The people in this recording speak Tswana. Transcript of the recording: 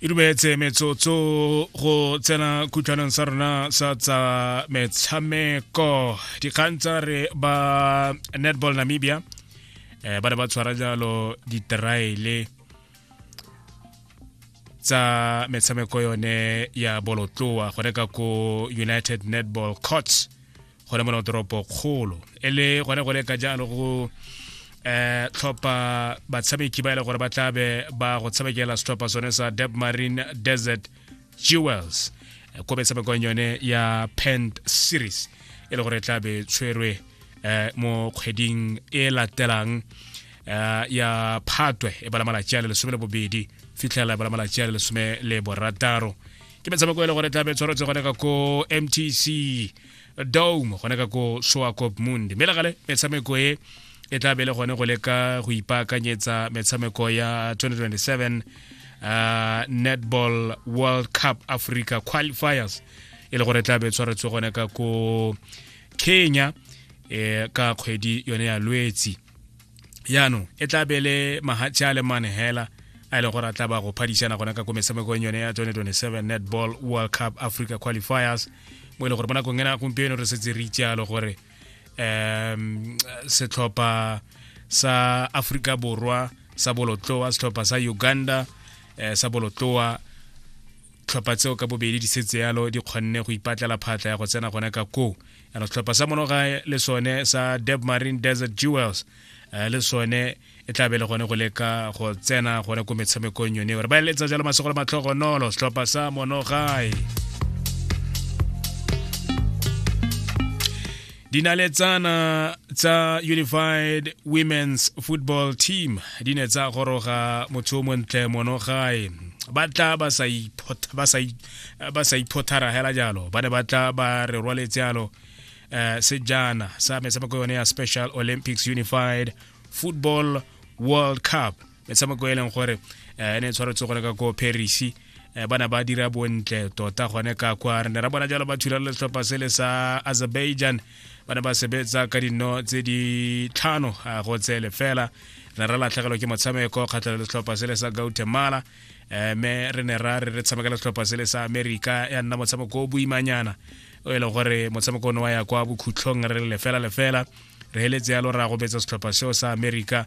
e dumetse metsotso go tsena khutlhanong sa rona sa tsa metshameko dikgang tsa re ba netball namibia eh, ba ne ba tshwara jalo diteraele tsa metshameko yone ya bolotloa gone ka ko united netball courts gone mona toropo kgolo e le gone go le ka jalo go eh tlhopha batshameki ba ile e gore ba tlabe ba go tshamekela setlhopha sone sa Deb Marine Desert Jewels eh, ko metshamekong yone ya Pent Series e le gore e tlabe tshwerwe eh mo kgweding e latelang eh, ya phatwe e bala malatsi a le lesome le bobedi fitlhela e bala malatsi a le lesome le borataro ke metshameko e le gore e tlabe tshwaretse gone ka ko mtc dome gona ka ko soakop mundi mme legale metshameko e e tla bele gone go leka go ipaakanyetsa metshameko ya 2027 uh, netball world cup africa qualifiers e le gore tla be tshwaretswe gone ka ko kenya eh, ka kgwedi yone ya lwetsi yaanong e tla be le mahatše a le mane hela a e le gore a tla ba go phadišana gona ka ko metshamekong yone ya 2027 netball world cup africa qualifiers mo e le gore mo nakong ena gompieno re setse re itsealo gore um setlhopha sa africa borwa sa bolotloa setlhopha sa uganda eh, sa bolotloa tlhopha tseo ka bobedi di setse yalo di kgonne go ipatlela phatla ya go tsena gone ka koo ana setlhopha sa monogae le sone sa deb marine desert jewels eh, le sone e tla be le gone go leka go tsena gone ko metshamekong yone gore ba eletsa jalo masego le matlhogonolo setlhopha sa monogae dinaletsana tsa unified women's football team di ne tsa goroga motho o montle monogae ba tla ba sa ba sa iphothara hela jalo ba ne ba tla ba re rwaletse jalo um sejana sa metshameko yone ya special olympics unified football world cup metshameko e leng gore um ne e tshwaretse gone ka ko paris Eh, bana ba dira bontle tota gone ka kwa re ne ra bona jalo ba thula le setlhopha se le sa azerbaijan ba ne ba sebetsa ka dino tse di tlhano ah, go tsele fela re ne ra latlhegelwa ke motshameko kgatlhelo le setlhopha se le sa guatemala um me re ne ra re re tshamekela setlhopha se le sa america ya nna motshameko o boimanyana o e le gore motshameko one wa ya kwa bokhutlhong re lefela lefela re heletse yalo ra gobetsa setlhopha seo sa america